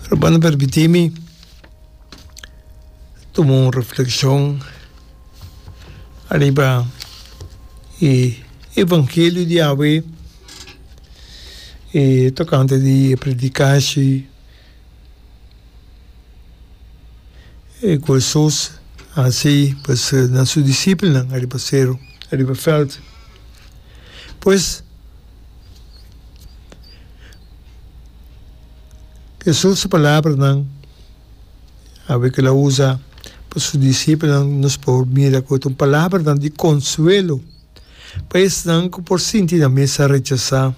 Hermano permiti mi tuma un reflekshon ariba e evangelio di Yahwe e tokante di e predikashi e ku Hesus a hasi pues na su disipelnan ariba seru ariba veld pues. Jesús su palabranan awe ku el a usa pa su disipelnan nos por mira ku ta un palabranan di konsuelo pa esnan ku por sinti nan mesa rechasá,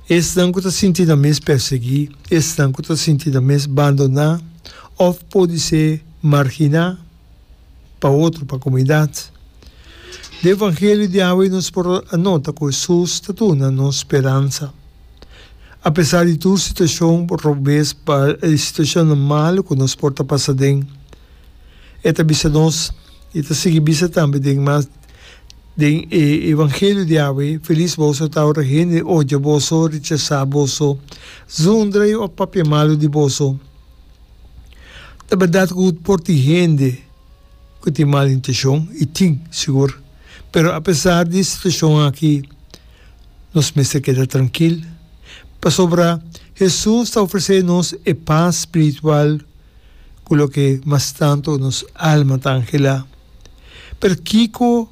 esnan ku ta sinti nan mes pèrsiguí, esnan ku ta sinti nan mes bandoná òf podisé marginá. pa otro, pa comunidad. Den e evangelio di awe nos por a nota cu Jesus ta duna nos speransa. Apesar di tur situacion, por rogbes pa e situacionnan malu cu nos por ta pasa den, e ta bisa nos y ta sigui bisa tambe den mas den e evangelio di awe, Feliz boso ta ora hende odia boso, rechasa boso, zundra y oj papia malu di boso. Ta berdad cu por tin hende cu tin mal intencion? Y tin, sigur. Pero apesar di e situacion aki, nos mester keda trankil, pasobra Jesús ta ofrece nos e pas spiritual cu loke mas tanto nos alma ta anhela. Pero kico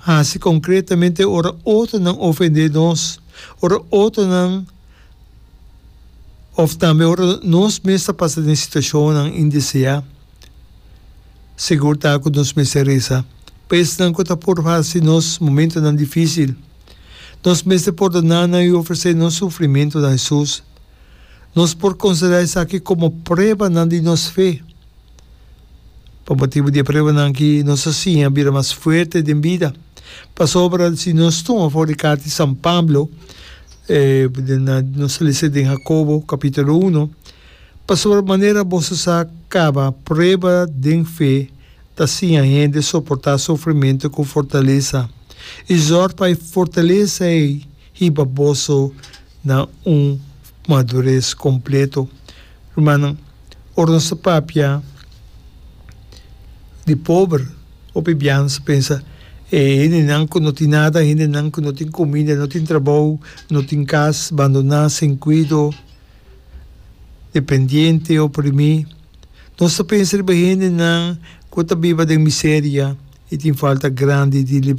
haci concretamente ora otronan ofende nos, ora otronan? Of tambe ora nos mes ta pasa den situacionnan indeseá, segur ta cu nos mester reza pa esnan cu ta por hasi nos momentonan dificil. Nos mester por donanan i ofrecé nos sufrimentonan a Hesus. Nos por considerá esaki como pruebanan di nos fe. Pa motibu di e pruebanan ki nos a siña bira mas fuerte den bida. Pasobra si nos tuma for di karta di San Pablo, nos a lesa den Hakobo kapitulo uno, Pasobra manera boso sa kaba prueba den fe ta siña hende soportá sufrimentu ku fortalesa, i zòrg pa e fortalesa ei hiba boso na un madures completo. Rumannan, ora nos ta papia di pober, hopi bia nos ta pensa, E hendenan cu no tin nada, hendenan cu no tin comida, no tin trabou, no tin cas, bandona, sin cuido, dependiente, oprimi. Nos ta pensa riba hendenan cu ta biba den miseria y tin falta grandi di.